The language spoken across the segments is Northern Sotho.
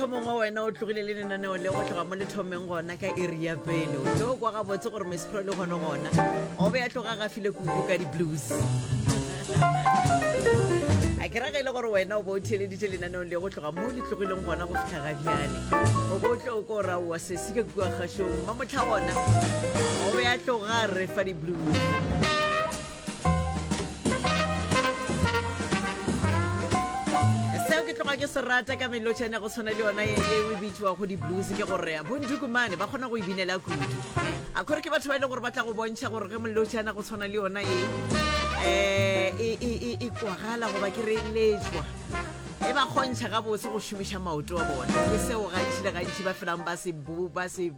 mohlomongwe wena o tlogile le lenaneo le go tloga mo le thomeng gona ka iri ya pele o tlo kwa gabotse gore mesepro le gone gona o be ya tloga gafile kuku ka di-blues a ke rage e le gore wena o bo o theeleditše lenaneong le go tloga mo le tlogileng gona go fitlha ga bjale o bo o tlo o ko raowa sesi ka kua kgašong ma motlha gona o be ya tloga re fa di-blues ke se rata ka melotšhane go tshwana le yona e o e bitšwa go di-blues ke gore bondukumane ba kgona go e binela kudu a kgore ke batho ba e leng gore ba tla go bontšha gore ge molotšhana go tshwana le yona e um e kwagala goba ke re letswa e ba kgontšha gabotse go šomiša maoto a bona ke seo gantši le gantši ba felang ba se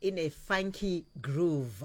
in a funky groove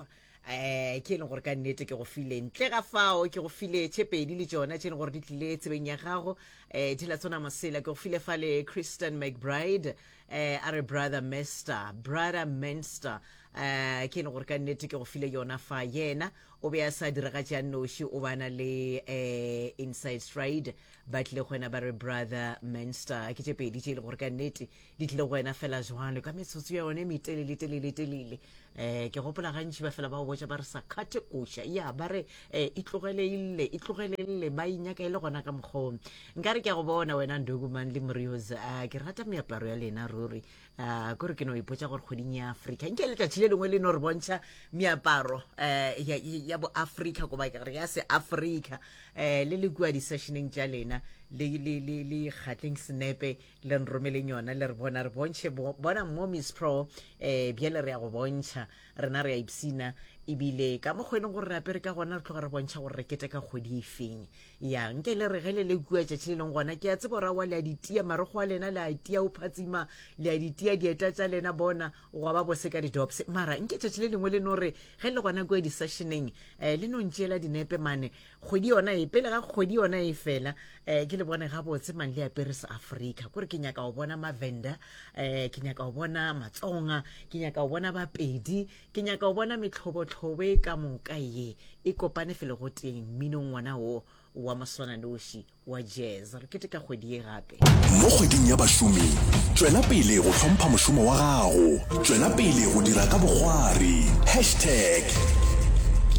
um ke e leng gore ka nnete ke go file ntle ga fao ke go file tše pedi le tšona tše e leng gore di tlile tsebeng ya gago um di la tsona masela ke go file fa le christian mcbride um a re brother mester brother menster um ke e leng gore ka nnete ke go file yona fa yena o be a sa diragatša noši o bana le um inside stride ba tlile go wena ba re brother menster ke tše pedi tše e leng gore ka nnete di tlile go wena fela jwalo ka metsotso ya yone metelele telele telele um ke gopola gantši ba fela ba botsa ba re sa kgathe koša ya ba re um e tlogelele e tlogelele ba inyaka e le gona ka mokgong nka re ke ya go bona wena ndokumang le morios a ke rata meaparo ya lena ruri um kore ke no ipotsa gore kgweding ya afrika nke letšatši le lengwe le no re bontšha meaparo um ya boafrika goba ke re ya se afrika um le le kua di-sessioneng tša lena le kgatleng senepe le nromeleng yona le re bona re bontšhe bona mo miss pro um eh, bjale re ya go bontšha rena re ya ipsina ebile ka mokgwa e leng gore re apere ka gona re tloga re bontšha gore re kete ka kgwedi e feng ya nke le re ge le le kua tšatši le leng gona ke a tsebo rawa le a ditia marogo a lena le a tia o phatsima le a ditia dieta tša lena bona gwa ba bose ka didops mara nke tšatši le lengwe le no re ge le gona kua di-sessioneng um eh, le no ntšeela dinepe mane kgwedi yona e pele ga kgwedi yona e fela um ke le bone gabotse mang le apere sa africa kore ke nyaka go bona mavenda um ke nyaka go bona matsonga ke nyaka go bona bapedi ke nyaka go bona metlhobotlhobo e ka moka ye e kopane fele go teng mminong ngwana wo wa moswananoši wa jazz re keteka kgwedi ye gape mo kgweding ya bašomi tšwela pele go hlompha mošomo wa gago tšwela pele go dira ka bogwari hashtag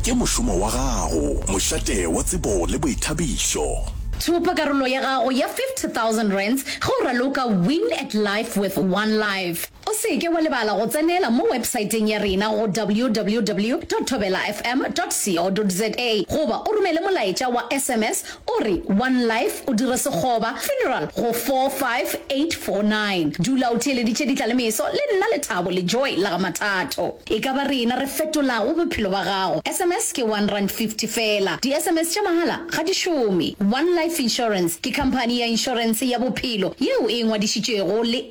ke mošomo wa gago mošate wa tsebo le boithabišo Thopa karolo ya gago ya 50 000 rands ge o raloka Win at Life with One Life. O se ke wa lebala go tsenela mo websaeteng ya rena go www.thobelafm.co.za goba o romele molaetša wa sms o re One Life o dire sekgoba, funeral, go 45849. Dula o theeleditše Ditla le Meso le nna Lethabo le Joy la ga Mathato. E ka ba rena re fetolago bophelo ba gago. Sms ke one rand fifty fela. Di-sms tša mahala ga di šome. One Life Insurance ke khamphani ya inšorense ya bophelo yeo e ngwadišitšwego le.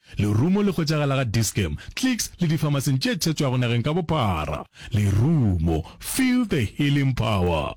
Lerumo le hwetšagala ga Dis-Chem, Clicks le difamaseng tše thetšwago nageng ka bophara. Lerumo, feel the healing power!